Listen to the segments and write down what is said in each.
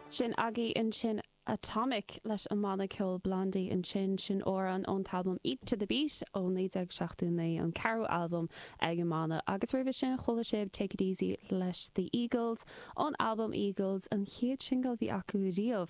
Sin agaibh ansin Atomic leis an mbanna ceoil Blondie ansin sin amhrán ón t-albam Eat to the Beat ó 1979, an ceathrú albam ag an mbanna, agus roimhe sin chuala sibh Take It Easy leis The Eagles ón albam Eagles, an chéad singil a bhí acu riamh.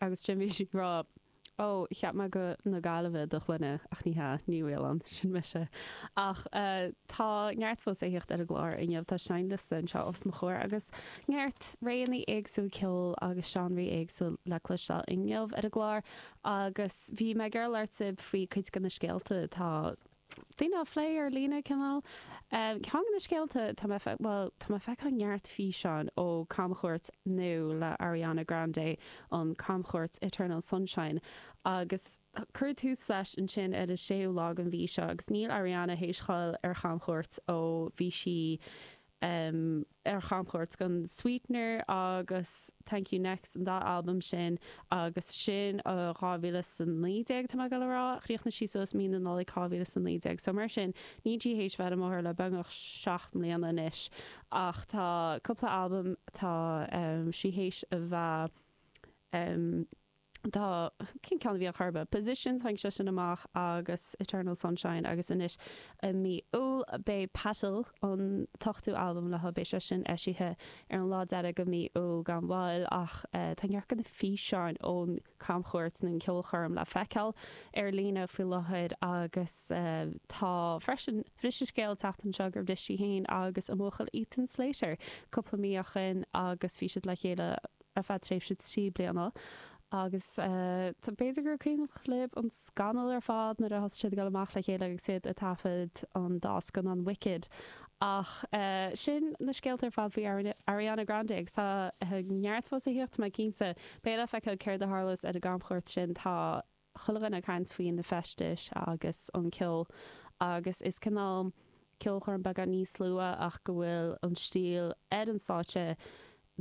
Agus ansin bhí sí ag rá, Ó, cheap mé gur na Gaillimhe do shloinne, ach ní hea, Ní Mhaoláin, sin mise. Ach tá neart fós le thíocht ar an gclár inniu, tá seinnliosta anseo os mo chomhair agus neart réanna éagsúil ceoil agus seánraí éagsúil le cloisteáil inniu ar an gclár. Agus bhí mé ag labhairt libh faoi cuid de na scéalta atá. daoine á phlé ar líne, cineál. Ceann de na scéalta, tá mé, bhuel, tá mé ag feiceáil neart físeáin ó camchuairt nua le Ariana Grande, an camchuairt Eternal Sunshine, agus cuireadh tús leis ansin ar an séú lá den mhí seo agus níl Ariana théis dul ar chamchuairt ó bhí sí um ar chamchuairt dhon Sweetener agus Thank You Next an dá albam sin agus sin ó 2019 tá mé ag goil a rá chríochnaigh sí suas mí na Nollag 2019 so mar sin níl sí théis a bheith ar an mbóthar le beagnach seacht mbliana anois ach tá cúpla albam tá um sí théis a bheith um tá, cén ceann a bhí ann ar chor ar bith? Positions, tháinig sé sin amach agus Eternal Sunshine agus anois i mí Iúil beidh Petal, an t-ochtú albam léi, beidh sé sin eisithe ar an lá deiridh dho mhí Iúil gan mhoill ach tá neart de na físeáin ón camchuairt nó an ceolchoirm le feiceáil ar líne faoi láthair agus tá freisin, bhris an scéal an tseachtain seo gur bhris sí féin agus a buachaill Ethan Slater cúpla mí ó shin agus bhí siad le chéile. ar feadh tréimhse trí bliana agus b'fhéidir gur cuimhin libh an scannal ar fad nuair a thosaigh siad ag dul amach le chéile agus iad ag taifead an dá scannán Wicked ach sin na scéalta ar fad faoi Ariana Grande agus tá neart fós a thíocht tá mé cinnte beidh le feiceáil céard a tharlós ar an gcamchuairt sin tá chuile dhuine ag caint faoi na feistis agus an ceol agus is cineál ceolchoirm beagán níos lú ach go bhfuil an stíl ar an stáitse